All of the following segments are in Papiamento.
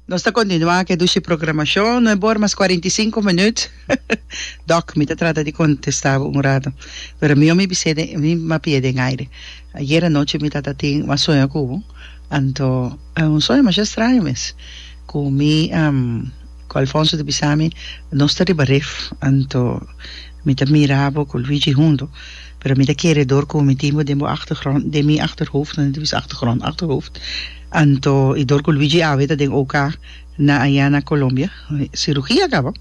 Nos ta kontinuá ku e dushi programashon. No e bor mas kuarenta i sinku minüt. Dòk, mi ta trata di kontestá bo un ratu, pero mi oi mi bis'é den, mi mapi'é den aire. Ayer anochi mi tatatin a sueña ku bo, anto e un sueño masha straño mes. Ku mi, ku Alfonso ta bisa mi nos ta riba ref, anto. Mi ta mira bo cu Luigi hunto, pero mi ta kere door cu mi tin bo den bo achtergrond, den mi achterhoofd, no debis achtergrond, achterhoofd. Anto y door cu Luigi awe ta den OK na aya na Colombia, cirugia a caba,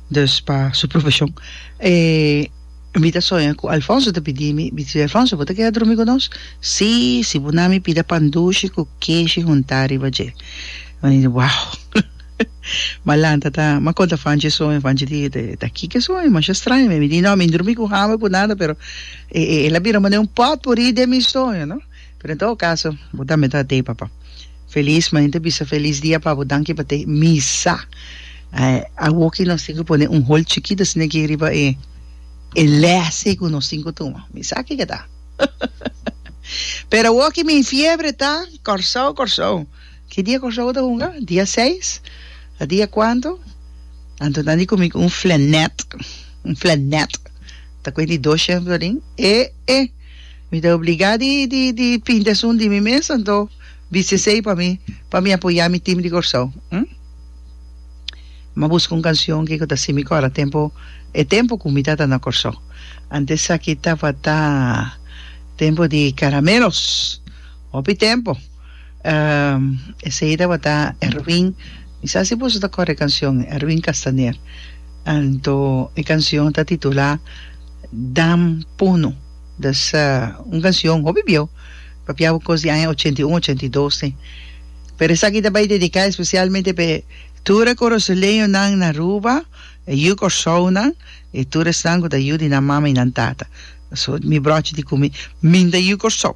dus pa su profesion. E mi ta soña cu Alfonso ta pidi mi, bici, Alfonso, bo ta keda drumi cu nos? Sí, si bo na mi pida pan dushi cu kishi hunta riba dje. Mi di, wow! Malanta ta ma con ta fanchi soño fanchi di ta ki ke soño masha straño mi di no mi drumi cu hama cu nada pero el a bira mane un potpuri den mi soño no pero en todo caso bo ta me trat'e papá feliz ma enta bisa feliz dia pabo danki pa te misa awo ki nos tin ki pone un hol chikit asina aki riba e lesi cu nos tin cu tuma mi sa kiko ta pero awo aki mi fiebre ta Kòrsou Kòrsou Ki dia ku Rosa ta hunga? Dia seis? Ta dia kuantu? Anto nan di ku mi ku un flenet, un flenet, ta kuent di dos shèf Florin, e e mi ta obligá di di di pinta esun di mi mes, anto bisti esei pa mi, pa mi apoyá mi tim di Kòrsou. Hm? Bo a buska un kanshon ki ku ta si mi kòr a tempu e tempu ku mi tabata na Kòrsou. Ante esaki tabata tempu di karamelos, hopi tempu. Um esei tabata Erwin, mi sa si boso ta kòrda e kanshon, Erwin Castaner. Anto e kanshon ta titulá Dam Punu. Dus uh un kanshon hopi bieu, papia bo kos di aña ochenta i un, ochenta i dos tin. Pero esaki ta bai dediká espesialmente p'e tur e korosoleñonan na Aruba, e yu Kòrsounan, i tur esnan ku ta yu di nan mama i nan tata. Pasobra mi bròchi di ku mi, min ta yu Kòrsou.